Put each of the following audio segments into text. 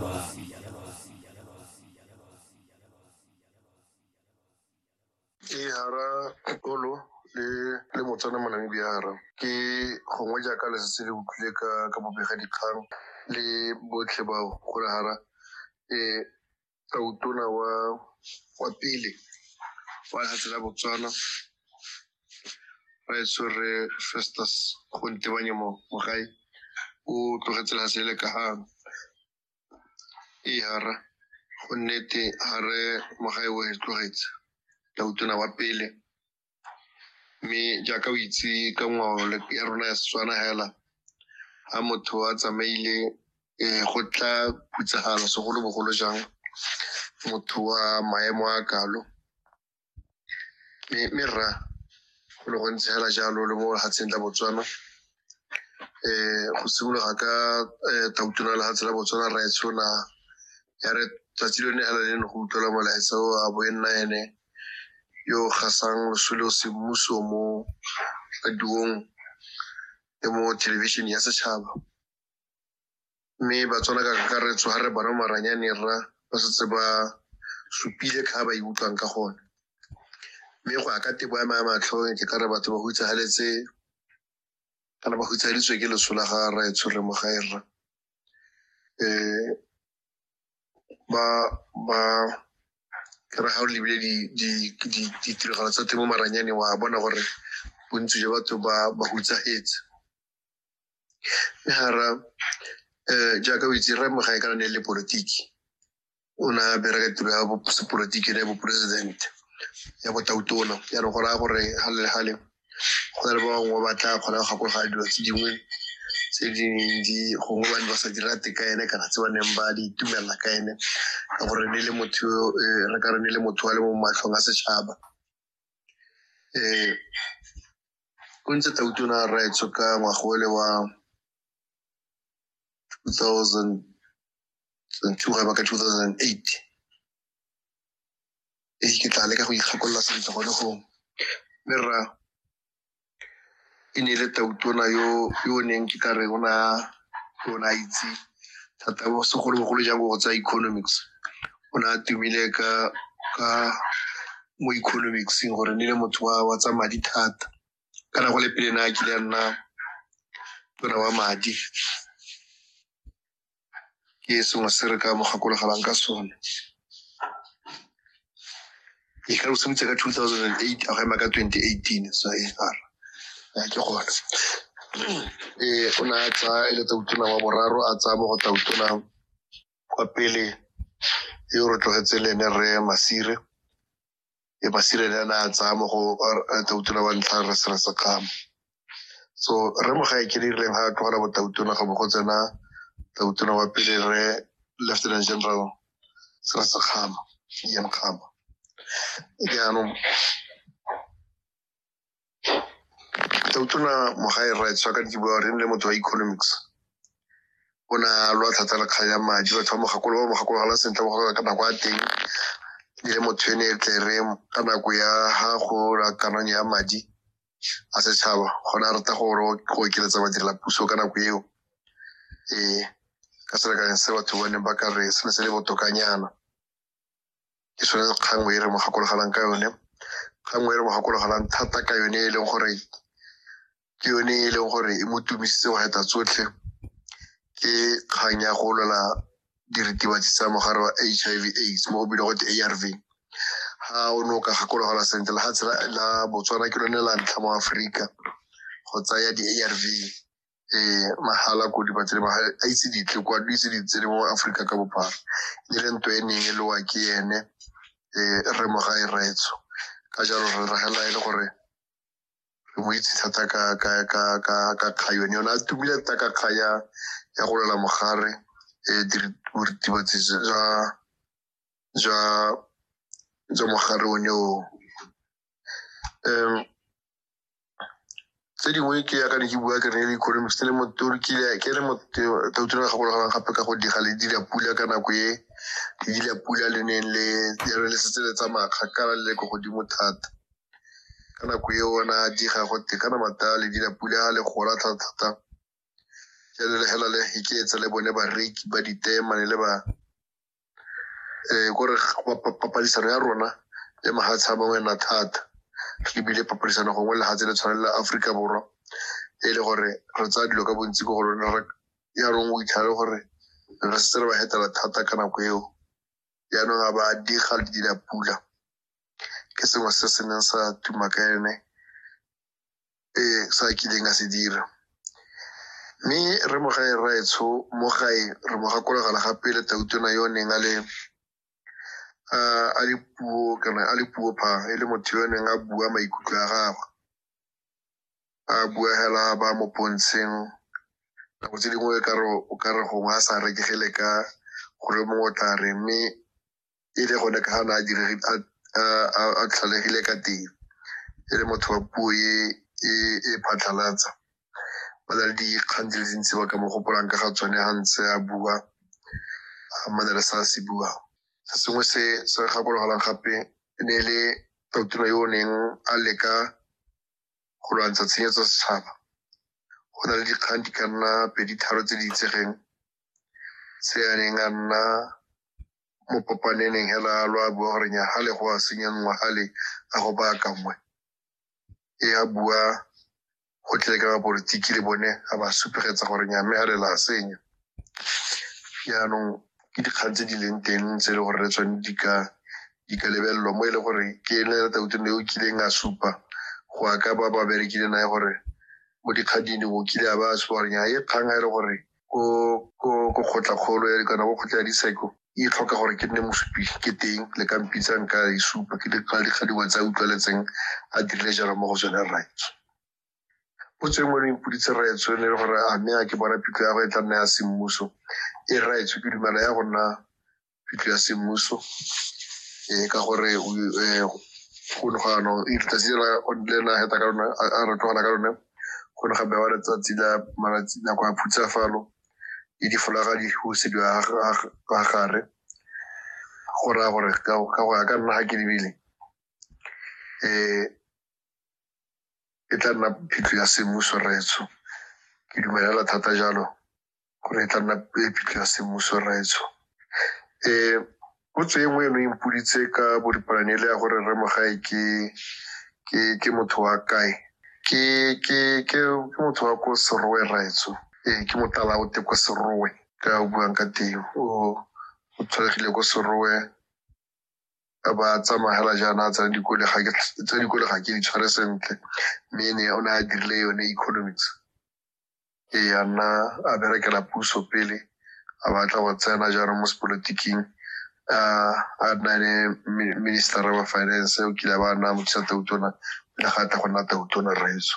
ke hara kolo le le motswana mo namibia hara ke gongwe jaaka le setse le utlwile ka ka bobega dikgang le botlhe bao gore hara um tautona wa wa pele wa lefatshe la botswana baetso re festus go ntebanye mo mogae o tlogetse la sele ka ga ee hara go nnete ga re mogae o e tlogetse la utona wa pele mme jaaka o itse ka ngwao ya rona ya setswana hela ga motho a tsamaile um go tla putsagalo segolobogolo jang motho wa maemo a kalo mme mme rra go le gontsi fela jalo le mo lefatsheng la botswana eh go simologa ka eh, tautona lefatshe la botswana ra e tshola ya re tsatsi lone fela le ne go utlwela molaetsa o a bo e nna ene yo o gasang losole o semmuso mo radiong le mo thelebišeneng ya setšhaba mme ba tswala ka kakaretso ga re bona maranyane rra ba setse ba supile ka ba ikutlwang ka gone mme go ya ka tebo ya maya matlho ke ka re batho ba hutsagaletse kana ba hutsagaditswe ke leso la ga rra e tshwere mo gae rra um ba ba ke re ga o lebile ditiragalo tsa temo maranyane wa bona gore bontsi jwa batho ba ba hutsagetse mme gara um jaaka o itse remo ga e kana ne le politiki o ne a bereka tiro ya sepolotiki ne ya boporesidente ya botautona jaanong go raya gore ga le gale go na le ba bangwe ba tla kgona go gakologa dilo tse dingwe tse di neng di gongwe ba ne ba sa di rate ka ene kana tse ba neng ba di itumelela ka ene ka gore ne le motho eh, re ka re ne le motho wa le mo matlhong a setšhaba um o ntse tla utona rraetsho ka ngwagole wa 2002 ga ba ka 2008 e ke tla leka go ikgakolola sentle gone go mme rra e ne e le tautona yo yo o neng ke ka re o na o na itse thata segolobogolo jang go tsa economics o ne a tumile ka ka mo economicseng gore ne le motho wa wa tsa madi thata kana go le pele na kile a nna tona wa madi ke sengwe se re ka mo gakologelang ka sone e ka o simotse ka two thousand and eight a go ema ka twenty eighteen sa e r ke gone ee o ne a tsaya e le tautona wa boraro a tsaya mo go tautona kwa pele yo re tlogetse le ene re masire e masire ne a ne a tsaya mo go tautona wa ntlha re sere sekgama so re mo ga e ke dirileng ga a tlogela botautona ga bo go tsena tautona wa pele re lieutenant general sere sekgama ian kgama jaanong ke utlwela mogae right so ka ke bua re le motho wa economics o na lwa thata le kgang ya madi batho ba mogakolo ba mogakologalang sentle mo ka nako ya teng le motho ene e tle re ka nako ya ga go rakanang ya madi a setšhaba gona a rata gore go okeletsa badirela puso ka nako eo ee ka selekanyang se batho bone ba ka re se ne se le botokanyana ke sone kgang e re mo gakologelang ka yone kgang e re mo gakologelang thata ka yone e leng gore ke yone e leng gore e mo tumisitse go heta tsotlhe ke kgang ya go lwela diritibatsi tsa mogare wa h i v aids mo go bile gote a r v ga o ne o ka gakologelwa sentle la ga tshela la botswana ke lone la ntlha mo aforika go tsaya di-a r v eh mahala ko dibatsele ba a itse ditle kwa di itse ditsele mo Afrika ka bophara e le ntwe e neng e lowa ke ene eh re mo ga e retso ka jalo re ragela e le gore re mo itse thata ka ka ka ka ka kgayo ne yona a tumile thata ka kgaya ya go lela mogare eh diritibatsi ja ja ja mogare o ne o um tse dingwe ke ya ka ne ke bua ke rene le economics le motori ke le ke le motori ga gologang gape ka go diga le dira pula ka nako e le dira pula le neng le ya re le setse le tsamaya kgakala le ko godimo thata ka nako e ona diga go te kana mata le dira pula le gola thata thata jalo le hela le iketse le bone bareki ba ditema le ba um kore papadisano ya rona le mahatshe a mangwe na thata re lebile papadisano gongwe lehatshe le tshwaneng la aforika borwa e le gore re tsaya dilo ka bontsi ko go rona yaanong o itlhale gore re setse re ba hetela thata ka nako eo yaanong a ba diga le dila pula ke sengwe se se neng sa tuma ka ene eh, sa kileng a se dira mme re mo gae raetsho mo gae re mo gakologela gape le tautona yo o neng a le a le puo kana a le puo pha e le motho yo o neng a bua maikutlo a gagwe a bua hela ba mo pontsheng nako tse dingwe o ka re gongwe a sa rekegele ka gore mongwe o tla re mme e le gone ka gana a tlhalegile ka teng e le motho wa puo e e phatlhalatsa ba na le dikgang di le dintsi ba ka mo gopolang ka ga tsone ga ntse a bua a mana le sa se buang se sengwe se se gakologalang gape e ne e le totino yo o neng a leka go lwantsha tshenyetso setšhaba go na le dikgang di ka nna pedi tharo tse di itsegeng se a neng a nna mo kopaneneng hela lo a bua gore nyagale go a senya ngwagale a go baya ka nngwe e a bua go tle ka bapolitiki le bone a ba supegetsa gore nyame a le la senya jaanong ke dikgang tse di leng teng tse e le gore re tsone di ka di ka lebelelwa mo e le gore ke ene le tautone yo o kileng a supa go ya ka ba ba berekile nae gore mo dikgading o kile a ba a supa gore nya e kgang a e le gore ko ko ko kgotla-kgolo ya kana ko kgotla ya diseko e tlhoka gore ke nne mosupi ke teng le ka mpitsang ka e supa ke dikgala dikgadiwa tsa utlwaletseng a dirile jalo mo go tsone rraetsho o tsweng ngwe mpoditse rraetsho ne le gore a mme a ke bona pitlo ya go e tla nna ya semmuso e rraetsho ke dumela ya go nna phitlho ya semmuso um ka gore um go ne gano letsatsi le na heta ka lone a re tlogela ka lone go ne ga bewa letsatsi la malatsi nako ya phutsafalo le difolaga di husediwa ga gare go raya gore ka go ya ka nna ga ke lebile um e tla nna phitlho ya semmuso retso ke dumelela thata jalo gore e tla nna puo e phitlho ya semmuso rraetsho um potso e nngwe eno e mpoditse ka boripalane le ya gore rre mogae ke ke ke motho wa kae ke ke ke ke motho wa ko serowe rraetsho ee ke motala o te ko serowe ka o buang ka teng o o tshwaregile ko serowe a ba tsamagela jaana tsa dikole ga ke tsa dikole ga ke di tshware sentle mme ne o ne a dirile yone economics e ya nna a berekela puso pele a batla go tsena jaanong mo sepolotiking a nna le minister wa finance o kile ba nna mothusa tautona le ga tla go nna tautona rraetso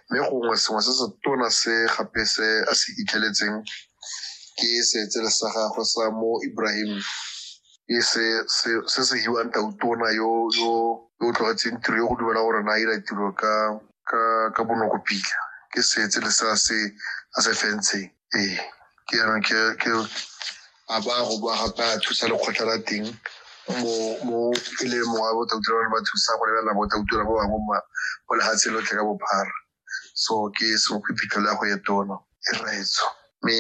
mme gongwe sengwe se se tona se gape se a se itlheletseng ke seetsele sa gagwe sa mo ibrahim ke se se hiwang tautona yo yo yo tlogetseng tiro yo go dumela gore na ira tiro ka ka ka bonoko pila ke setse le sa se a se fentsheng ee ke yana ke ke a ba go ba gape a thusa lekgotla la teng mo mo e le mongwe wa botautura ba ne ba thusa go lebelela botautura ba bangwe mo mo lefatsheng lotlhe ka bophara so ke senkgwiphitlho le ya go etona e raetso mme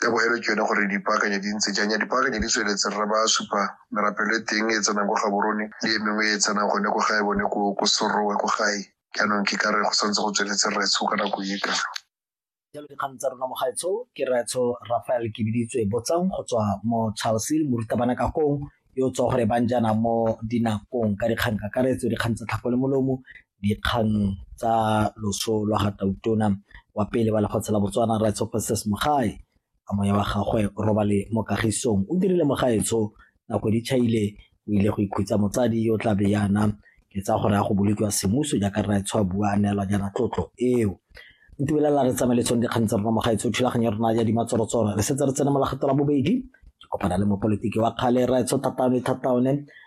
tabogelo ke yone gore dipaakanyo di ntse jang ya dipaakanyo di tsweletse re ba supa merapelo e teng e tsenang kwa gaborone le e mengwe e tsenang gone ko gae bone ko serowe ko gae jaanong ke ka re go santse go tsweletse retsho ka nako e kalo jalo dikgang tsa rona mogaetsho ke retsho rafael ke biditswe botsang go tswa mo charlesil morutabana ka kong yo tswa gore bang jaana mo dinakong ka dikgang kakaretso dikgang tsa tlhako le molomo dikgang tsa loso lwa ga tautona wa pele wa lefatshe la botswana rights of princess mogae a moya wa gagwe robale mo kagisong o dirile mogaetsho nako di chaile o ile go ikhutsa motsadi yo tla be yana ke tsa gore ya go bolokiwa semmuso jaaka rra e tshwa bua a neelwa jaana tlotlo eo ntubelela re tsamaeletsong dikgang tsa rona mogaetsho thulaganyo ya rona ya dimatsorotsoro re setse re tsene mo la kgetho la bobedi ke kopana le mopolitiki wa kgale rra e tsho thataone thataone